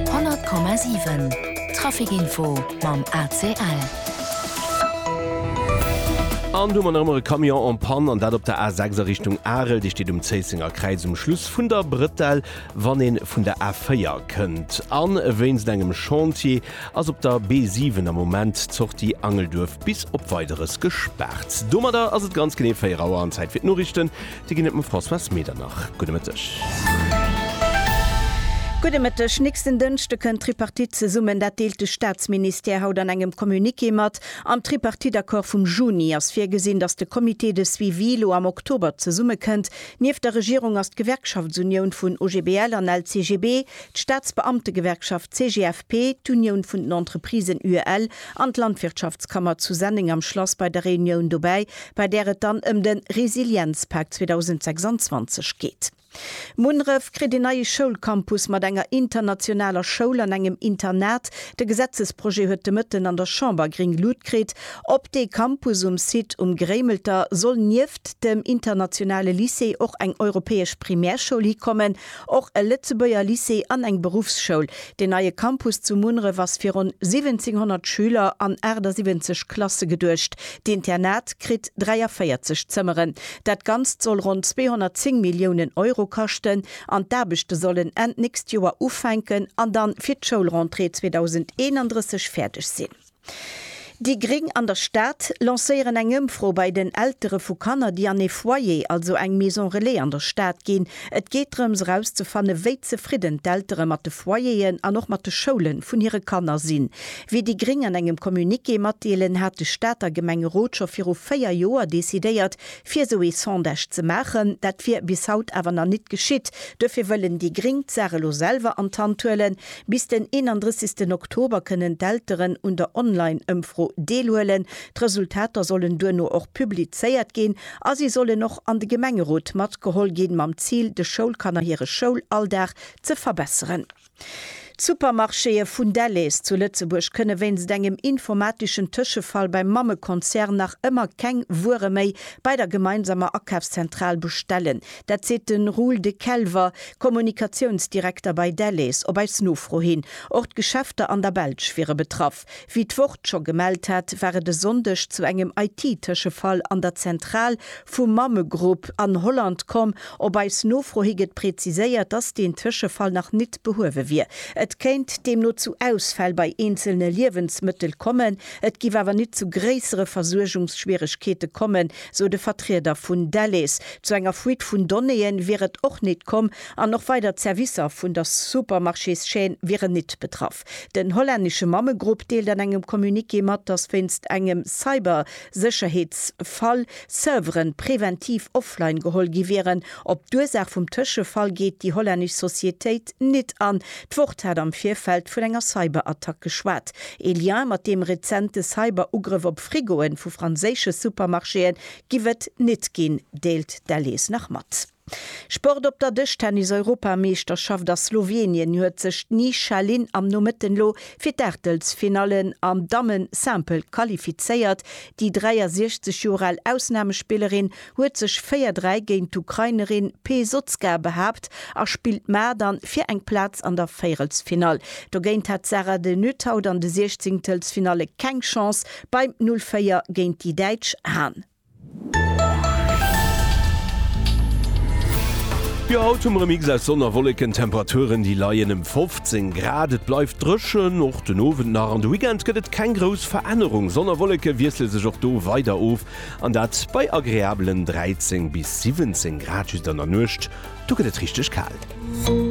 100,7 Traficinfo mam ACL. An do man erëmmer e Camion en panne, an dat op der A6 a Richtung Arel. Déi steet um Zéissenger Kräiz um Schluss vun der Brëtell, wann ee vun der A4 kënnt. A wéinst engem Chantier ass op der B7 am Moment d'Sortie Angelduerf bis op Weideres gespaart. Domadder ass et ganz genee 4 Auer an Zäit fir d'Noriichten. Si ginn et mam Françoise Medernach. Gudde Mëtteg. Gudde Mëtteg. Nächsten Dënschde kënnt d'Tripartite zesummen. Dat deelt de Staatsministère haut an engem Communiqué mat. Am Tripartite-Accord vum Juni ass virgesinn, datt de Comité de suivi elo am Oktober zesummekënnt. Nieft der Regierung ass d'Gewerkschaftsunioun vun OGBL an LCGB, d'Staatsbeamtegewerkschaft CGFP, d'Unioun vun den Entreprisen UEL An d'Landwirtschaftskammer zu Senneng am Schlass bei der Reunioun dobäi, bei där et dann ëm de Resilienzpak 2026 geet. Munref kritt een neie Schoulcampus mat enger internationaler Schoul an engem Internat. De Gesetzesprojet huet de Mëtten an der Chamber gréng Lut kritt. Op dee Campus um Site Um Gréimelter soll nieft dem internationale Lycée och eng europäesch Primärschoul hikommen. Och e Lëtzebuerger Lycée an eng Beruffsschoul. Deen neie Campus zu Munneref ass fir ronn 1700 Schüler an 78 Klasse geduecht. D'Internat kritt 43 Zëmmeren. Dat Ganzt soll ronn 210 Milliounen Euro kaschten an d'Aarbechte sollen Enn d'nächst Joer ufänken an dann fir d'Schoulrentrée 2031 fäerdeg sinn. Déi Gréng an der Stad lancéieren eng Ëmfro bei den Eltere vu Kanner, déi an ee Foyer, also eng Maison Relais an der Stad ginn. Et geet drëms erauszefanne wéi zefridden d'Eltere mat de Foyeren an och mat de Schoule vun hire Kanner sinn. Wéi déi Gréng an engem Communiqué matdeelen, hat de Stater Gemengerot scho viru 4 Joer decidéiert fir esou ee Sondage ze maachen. Dat wier bis haut awer nach nit geschitt. Duerfir wëllen déi Gréng d'Saach elo selwer an d'Hand huelen. Bis den 31 Oktober kënnen d'Elteren un der Online-Ëmfro deelhuelen. D'Resultater sollen duerno och publizéiert ginn a si sollen och an de Gemengerot matgeholl ginn, mam Zil, de Schoulkanner hire Schoulalldag ze verbesseren. D'Supermarchéë vun Delhaize zu Lëtzebuerg kënne wéinst engem informateschen Tëschefall beim Mammekonzern nach ëmmer keng Wuere méi bei der gemeinsamer Akafszentral bestellen. Dat seet de Roel De Kelver, Kommunikatiounsdirekter bei Delhaize, op eis Nofro hin. Och d'Geschäfter an der Belsch wiere betraff. Wéi d'Wort scho gemellt hat, war et e Sonndeg zu engem IT-Tëschefall an der Zentral vum Mamme Group an Holland komm. Op eis Nofro hi gëtt preziséiert, dass deen Tëschefall nach nit behuewe wier. Et kéint deemno zu Ausfäll bei eenzelne Liewensmëttel kommen. Et giff awer nit zu gréissere Versuergungsschwieregkeete kommen, sou de Vertrieder vun Delhaize. Zu enger Fuite vun Donnéeën wier et och nit komm an och weider Zerwisser vun der Supermarchés-Chaîne wieren nit betraff. Den hollännesche Mammegrupp deelt an engem Communiqué mat, datt wéinst engem Cyber-Sécherheetsfall Servere preventiv offline geholl gi wieren. Op d'Ursaach vum Tëschefall geet déi hollännesch Societéit. nit an. D'Wort hat am Virfeld vun enger Cyberattack geschwat. Ee Lien mat deem rezente Cyberugrëff op Frigoe vu franséische Supermarchéë giff et nit ginn, deelt d'LS nach mat. Sport Op der Dëschtennis-Europameeschterschaft a Slowenien huet sech d'Ni Shailin am Nomëtten elo fir d'Aachtelsfinallen am Damme-Simple qualifizéiert. Déi 63 Joer al Ausnamespillerin huet sech 4, 3 géint d'Ukrainerin Pesotzka behaapt a spillt mar dann fir eng Plaz an der Véierelsfinall. Dogéint hat d'Sara de Nuthaudt an de Siechzingtelsfinalle keng Chance beim 0, 4 géint déi Däitsch Han. Jo haut hu mer e Mix aus Sonn a Wolleken, Temperaturen déi leien ëm 15 Grad. Et bleift dréchen, och den Owend nach. An de Weekend gëtt et keng grouss Verännerung, Sonn a Wolleke wiessle sech och do weider of. An dat bei agreabelen 13 bis 17 Grad just an der Nuecht, do gëtt et richteg kal.